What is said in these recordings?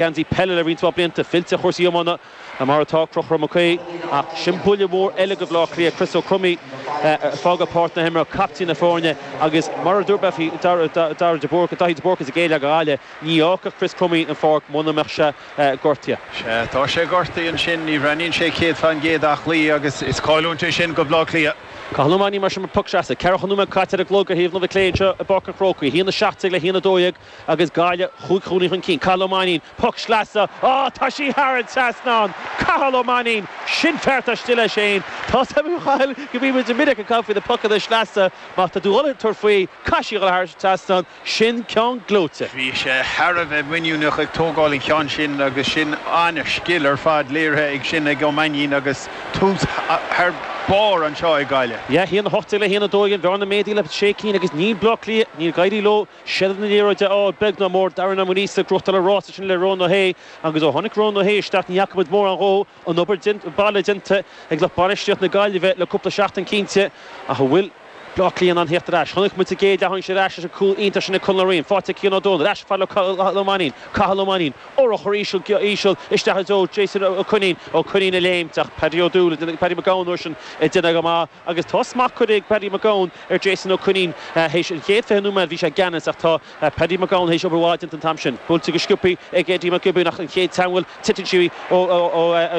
geansaí peile le roinnt mhaith blianta, fillte ar chúrsaí iomána, mar atá, Crochúr Mac Aodha, ach sin buille mór eile go Bleá Cliath, Chris Ó Cromthaí ag fágáil páirc na himeartha, caiptín na foirne agus mar a dúirt mé faoi Darragh de Búrca, Daithí de Búrca sa gcéad leath ag Gaillimh, ní fhágfadh Chris Cromthaí an pháirc muna mbeadh sé gortaithe. Sea, tá sé gortaithe ansin, ní bhreathnaíonn sé céad fa'n gcéad aclaí agus is cailliúint é sin go Bleá Cliath. Cathal Ó Mainnín mar sin poc sleasa. Ceathracha nóiméad caite ar an gclog ar thaobh na láimhe clé anseo i bPáirc an Chrócaigh. 1:17 le 1:12. Agus Gaillimh chúig chúilín chun cinn, Cathal Ó Mainnín, poc sleasa, á, tá sí thar an trasnán! Cathal Ó Mainnín, Sin fear atá stíl, a Shane. Tá a fhios agam, a Chathail, go mbíonn muid go minic ag caint faoi na pocanna sleasa. Má tá tú ag dhul ag tabhairt faoi, caithfidh sí a dhul thar an trasnán, sin ceann gleoite. Bhí sé thar a bheith muiníneach ag tógáil an cheann sin agus sin an-scil ar fad léirithe ansin ag Ó Mainnín agus tús thar barr anseo ag Gaillimh. Yeah, haon a hocht déag le haon a dó dhéag, an bhearna méadaithe le sé cinn agus níl Bleá Cliath, níor éirigh leo Seilbh na liathróide a fháil beag ná mór Darren Ó Muiríosa ag crochadh na rása sin le Rónán Ó hAodha agus ó tháinig Rónán Ó hAodha isteach ní fhaca muid mórán dhó, an obair baile déanta ag lucht bainistíocht na Gaillimhe le cúpla seachtain cinnte ach an bhfuil Bleá Cliath in ann theacht ar ais? Chonaic muid sa gcéad leath uainn ar ais leis an cúl iontach sin ag Conal Ó Riain, faighte ag Cian Ó Dónaill ar ais ag Cathal Ó Mainín, Cathal Ó Mainín, urchar íseal isteach i dtreo Jason Ó Coinín, Ó Coinín ag léimt ach Paddy Ó Dúill, Paddy Mac Gabhann a bhfuil sin déanta go maith. Agus tá smacht curtha ag Paddy Mac Gabhann ar Jason Ó Coinín. Théis an chéad 20 nóiméad bhí sé i gceannas ach tá Paddy Mac Gabhann théis obair mhaith a dhéanamh an t-am sin. Buailte go sciopthaí ag Eddie Mac Giobúin ach an chéad teagmháil titeann sí ó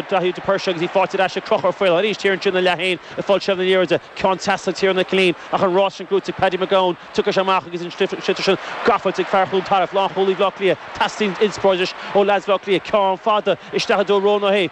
Daithí de Búrca agus í faighte ar ais ag Crochúr Ó Faoláin. Thiar ansin ina leath féin ag fáil seilbh na liathróide, ceann deas ag Tiarnán Ó Cillín ach an rás sin buaite ag Paddy Mac Gabhann. Tiocfaidh sé amach agus an sliotar sin gafa ag fear Chluain Tarbh, lánchúlaí Bhaile Átha Cliath. Teastaíonn inspioráid anois ó leaids Bhaile Átha Cliath, ceann fada isteach i dtreo Rónán Ó hAodha.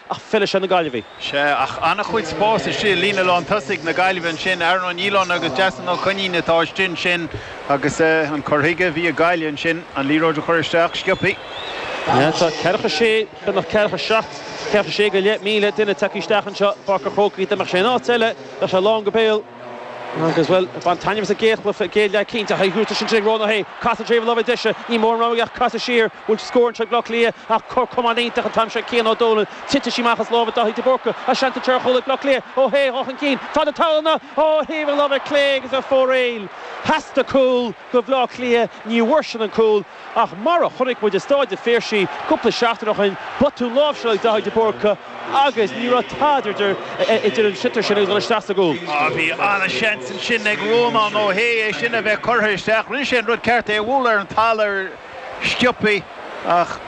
Ach feileadh sé na Gaillimhigh. Sea, ach an-chuid spáis istigh i líne lán tosaigh na Gaillimhe ansin. Aaron Ó Nialláin agus Jason Ó Coinín atá istigh ansin agus an cur chuige a bhí ag Gaillimh ansin, an liathróid a chur isteach sciobthaí. Sea, tá ceathracha is sé, beagnach ceathracha is seacht, ceathracha is sé go leith míle duine tagtha isteach anseo i bPáirc an Chrócaigh. Dá mbeadh sé in áit eile, bheadh sé lán go béal. Agus, bhuel, bhain taitneamh as an gcéad chluiche, an chéad leath cinnte. Faighte thuas ansin ag Rónán Ó hAodha. Casadh i dtreo na láimhe deise. Níl mórán rogha aige ach casadh siar. bhfuil scór anseo ag Bleá Cliath ach cor camáin iontach an t-am seo Cian Ó Dónaill titeann sí amach as lámha Daithí de Búrca ach seans anseo ar chúl ag Bleá Cliath Ó hAodha ag dhul chun cinn feadh na talúna ó thaobh na láimhe clé agus ar fóraoil theastaigh cúl ó Bhleá Cliath ní bhfuair siad an cúl ach mar a chonaic muid i Stáid a' Phiarsaigh cúpla seachtaine ó shin botún láimhseála ag Daithí de Búrca agus ní raibh tada idir idir an sliotar sin agus dul isteach sa gcúl. Á, bhí an-seans ansin ag Rónán Ó hAodha é sin a bheith curtha isteach. Rinne sé an rud ceart, é a bhualadh ar an talamh ar. Sciobtha, ach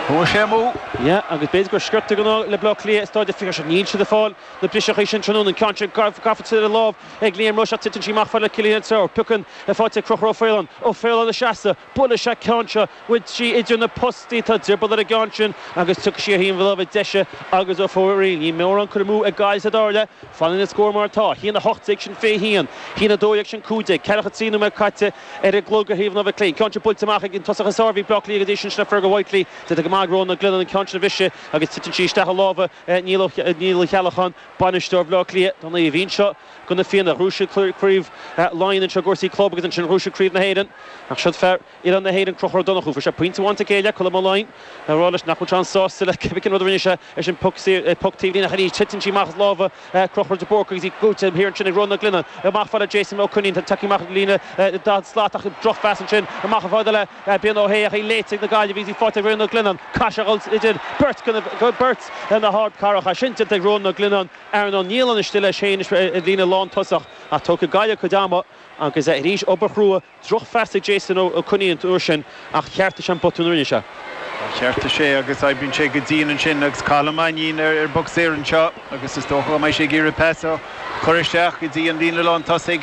chuaigh sé amú. Yeah, agus b'fhéidir gur script de ghnáth le Bleá Cliath, is dóigh le Fiacre seo. Níl siad ag fáil na briseachaí sin tráthnóna, an ceann sin gafa tríd an lámh ag Liam Rushe ach titeann sí amach chomh fada le Cillian Trayers. Piocann a faighte ag Crochúr Ó Faoláin. Ó Faoláin ina sheasamh. Buaileann sé an ceann seo. Gabhfaidh sí idir na postaí. Tá drioball ar an gceann sin agus tiocfaidh sí ar thaobh an láimhe deise agus ar fóraoil. Níl mórán curtha amú ag Gaillimh sa dara leath. Fanann an scór mar atá. 1:18 sin fiche haon. 1:12 sin cúig déag. Ceathracha trí nóiméad caite. Ar an gclog ar thaobh na láimhe clé. An ceann sin buailte amach ag an tosaí is fearr a bhí ag Bleá Cliath go dtí sin le Fergal Whitely. Déanta go maith ag Rónán Glennon an ceann sin a bhriseadh agus titeann sí isteach i lámha Néill Uí Cheallacháin, bainisteoir Bhaile Átha Cliath. Tá Naomh Aoin seo do na Fianna. Ghnóthaigh sé craobh Laighean anseo i gcúrsaí club agus ansin ghnóthaigh sé craobh na hÉireann. Ach siúd fear Oileán na hÉireann Crochúr Ó Donnchú. Fuair sé pointe amháin sa chéad leath, Colm Ó Laighin ag rá leis nach bhfuil sé an-sásta le cibé cén rud a rinne sé. É sin poc saor, é poc taobhlíne, ach anois titeann sí amach as lámha Chrochúir de Búrca agus í faighte thiar ansin ag Rónán Glennon. Amach chomh fada le Jason Ó Coinín, tá tacaí amach ag líne daichead slat ach drochphas ansin. Amach chomh fada le Brian Ó hAodha ach í léite ag na Gaillimhigh agus í faighte ag Rónán Glennon. Caithfidh sé a dhul idir beirt de beirt na hardcarracha sin déanta ag Rónán Glennon. Aaron Niland anois istigh leis féin sa líne lántosach ach tógfaidh Gaillimh a gcuid ama agus arís obair chrua Drochphas ag Jason Ó Coinín an uair sin ach cheartaigh sé an botún a rinne sé. Ó cheartaigh sé agus oibríonn sé go dian ansin agus Cathal Ó Mainnín ar an bpoc saor anseo agus is dócha go mbeidh sé ag iarraidh pas a chur isteach go dtí an líne lántosaigh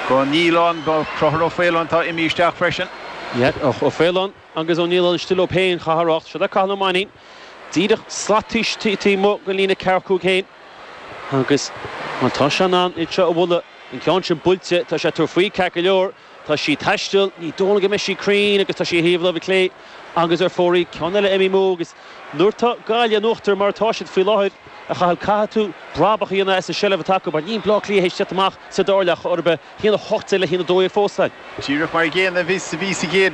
go Niland go Crochúr Ó Faoláin atá imithe isteach freisin. Ó Faoláin. Agus Ó Nialláin istigh leo féin, Chatharach, siúd é Cathal Ó Mainnín díreach slat taobh amuigh den líne ceathracha cúig féin agus má tá sé in ann iad seo a bhualadh. An ceann sin buailte, tá sé ag tabhairt faoi, ceart go leor. Tá sí ag taisteal, ní dóigh liom go mbeidh sí cruinn agus tá sí ar thaobh láimhe clé agus ar fóraoil, ceann eile imithe amú agus nuair atá Gaillimh in uachtar mar atá siad faoi láthair a chaitheamh, caithfidh tú brabach a dhéanamh as an seilbh atá acu mar níl Bleá Cliath théis teacht amach sa dara leath ar chor ar bith, haon a hocht déag le haon a dó dhéag fós, fan. Díreach mar an gcéanna a bhí sa gcéad